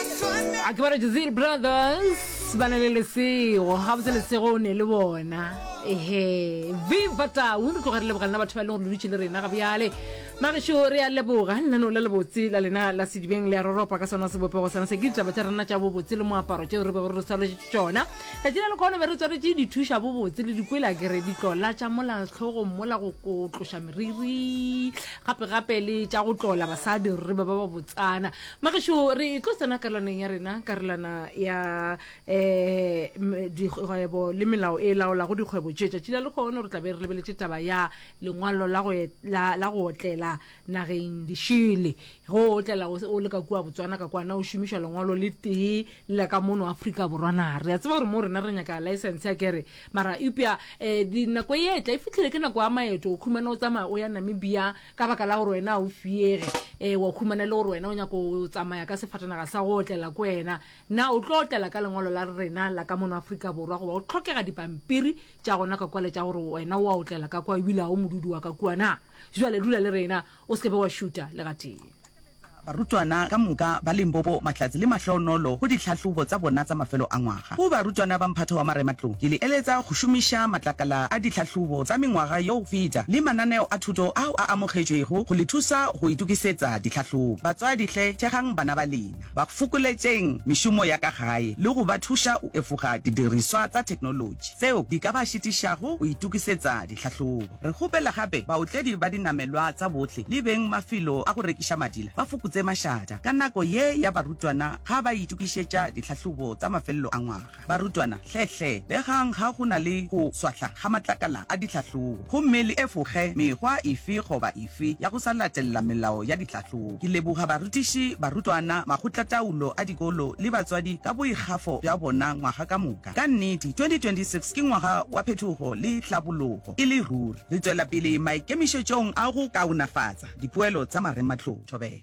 a ke ba re jazir brothers ba na le lesego ga botse lesego o ne le bona ehe viva tau re tloga re leboga lena batho ba e leng gore le dutse le rena ga bjale magešo re ya leboga nna no la lebotse la lena la sedibeng le ya roropa ka sona sebopego sana se ke ditaba tša rena tša bobotse le moaparo tšeo re bego re tswaletše tšona letši la lekgono be re tswaletše dithuša bobotse le dikwela kere ditlola tša mola tlhogong mola go ko tloša meriri gape-gape le tša go tlola basadi re be ba ba botsana Magešo, re tlo tsena karolwaneng ya rena, karolwana ya um dikgwebo le melao e laolago dikgwebo tše. Tšatši la lekgono re tla be re lebeletše taba ya lengwalo la go, la, la go otlela nageng dišele. Go otlela o, o le ka kua Botswana ka kwana o šomišwa lengwalo le tee le la ka mono Afrika Borwa na. Re a tseba gore moo rena re nyaka laesense akere, mara eupša um dinako e etla e fihlile ke nako ya maeto, o khumana o tsamaya o ya Namibia, ka baka la gore wena o fiege um wa humana le gore wena o nyako o tsamaya ka sefatanaga sa go otlela ko wena na o tlo otlela ka lengwalo la rena la ka mono aforika borwa goba o tlhokega dipampiri tša gona ka kwale tša gore wena o a otlela ka kwa ebile ga o modudi wa ka kuana jale dula le rena o seke be wa šuta le gatee Barutwana ka moka ba Limpopo mahlatse le mahloonolo go ditlhahlobo tsa bona tsa mafelo a ngwaga. Go barutwana ba mphato wa marematlou, ke le eletsa go šomiša matlakala a ditlhahlobo tsa mengwaga yo go feta le mananeo a thuto ao a amogetšwego go le thusa go itokisetsa ditlhahlobo. Batswadi hle, thegang bana ba lena. ba fokoletšeng mešomo ya ka gae le go ba thuša go efoga didiriswa tsa theknolotši tseo di ka ba šitišago go itokisetsa ditlhahlobo. Re kgopela gape baotledi ba dinamelwa tsa bohle le beng mafelo a go rekiša madila ba fokotse mašata ka nako ye ya barutwana ga ba itokišetša ditlhahlobo tsa mafelelo a ngwaga. Barutwana, hle-hle begang ga go na le go swahla ga matlakala a ditlhahlobo, gomme le efoge mekgwa efe goba efe ya go sa latelela melao ya ditlhahlobo. Ke leboga barutiši, barutwana, makgotlataolo a dikolo le batswadi ka boikgafo bja bona ngwaga ka moka. Ka nnete, 2026 ke ngwaga wa phetogo le tlhabologo e le ruri. Re tšwela pele maikemišetšong a go kaonafatsa dipoelo tsa marematlou. Thobela.